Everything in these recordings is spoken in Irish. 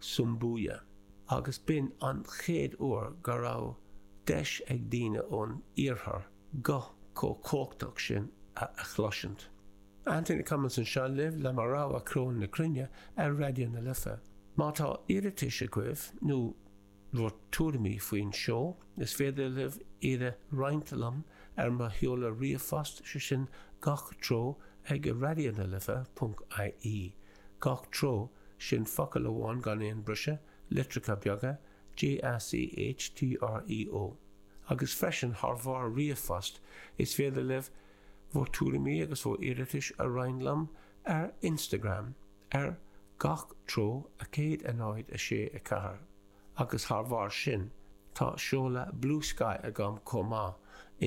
Sumbuya, agus b'in an chéad uair go raibh deis ag daoine ón Iarthar guth chomh cumhachtach sin a chloisint. Anthony Cummins anseo libh le mo rogha ceol na cruinne ar Raidió na Life. Má tá iarratais agaibh nó. bhur dtuairimí faoin seó. Is féidir libh iad a roinnt liom ar mo sheoladh ríomhphost, sé sin gach treo ag raidionalife ponc ie. gach treo, sin focal amháin gan aon briseadh, litreacha beaga, G A C H T R E O. Agus freisin, thar bharr ríomhphost, is féidir libh bhur dtuairimí agus bhur iarratais a roinnt liom ar Instagram. ar gach treo 106 4 agus thar bharr sin tá seoladh BlueSky agam chomh maith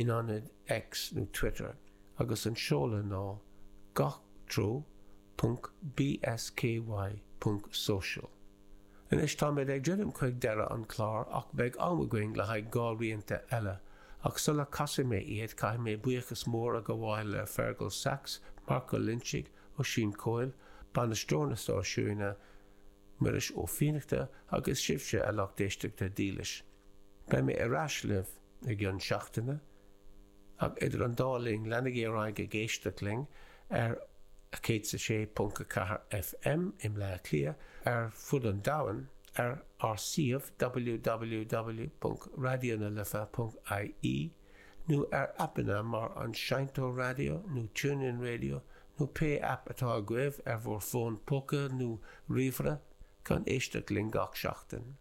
in ionad X nó Twitter agus an seoladh ná gach treo ponc bsky ponc social. Anois táimid ag druidim chuig deireadh an clár ach beidh am againn le haghaidh dhá rianta eile ach sula casfaidh mé iad caithfidh mé buíochas mór a gabháil le Fergal Sachs, Marco Linchig, Oisín Coyle, Bainisteoir na Stáisiúine, Muiris Ó Fiannachta agus sibhse a lucht éisteachta dílis. Beidh mé ar ais libh i gcionn seachtaine ach idir an dá linn leanaigí ar aghaidh ag éisteacht linn ar 106.4 FM i mBleá Cliath ar fud an domhain ar ár suíomh www.raidionalife.ie nó ar aipeanna mar an Seinnteoir Raidió nó TuneIn Radio nó pé aip atá agaibh ar bhur bhfón póca nó ríomhaire, chun éisteacht linn gach seachtain.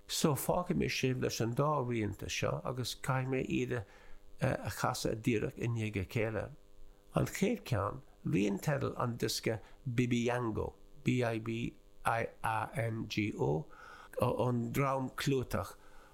So, fágfaidh mé sibh leis an dá rianta seo agus caithfidh mé iad a chasadh díreach i ndiaidh a chéile. An chéad cheann, rian teidil an diosca Bibiango, B I B I A N G O, ón dream clúiteach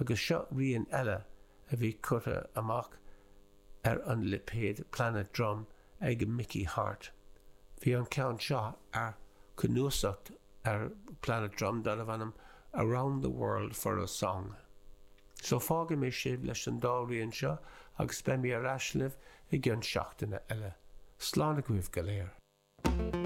agus seo rian eile a bhí curtha amach ar an lipéad Planet Drum ag Mickey Hart. Bhí an ceann seo ar cnuasach ar Planet Drum darbh ainm Around the World for a Song. So fágfaidh mé sibh leis an dá rian seo agus beidh mé ar ais libh i gcionn seachtaine eile. Slán agaibh go léir.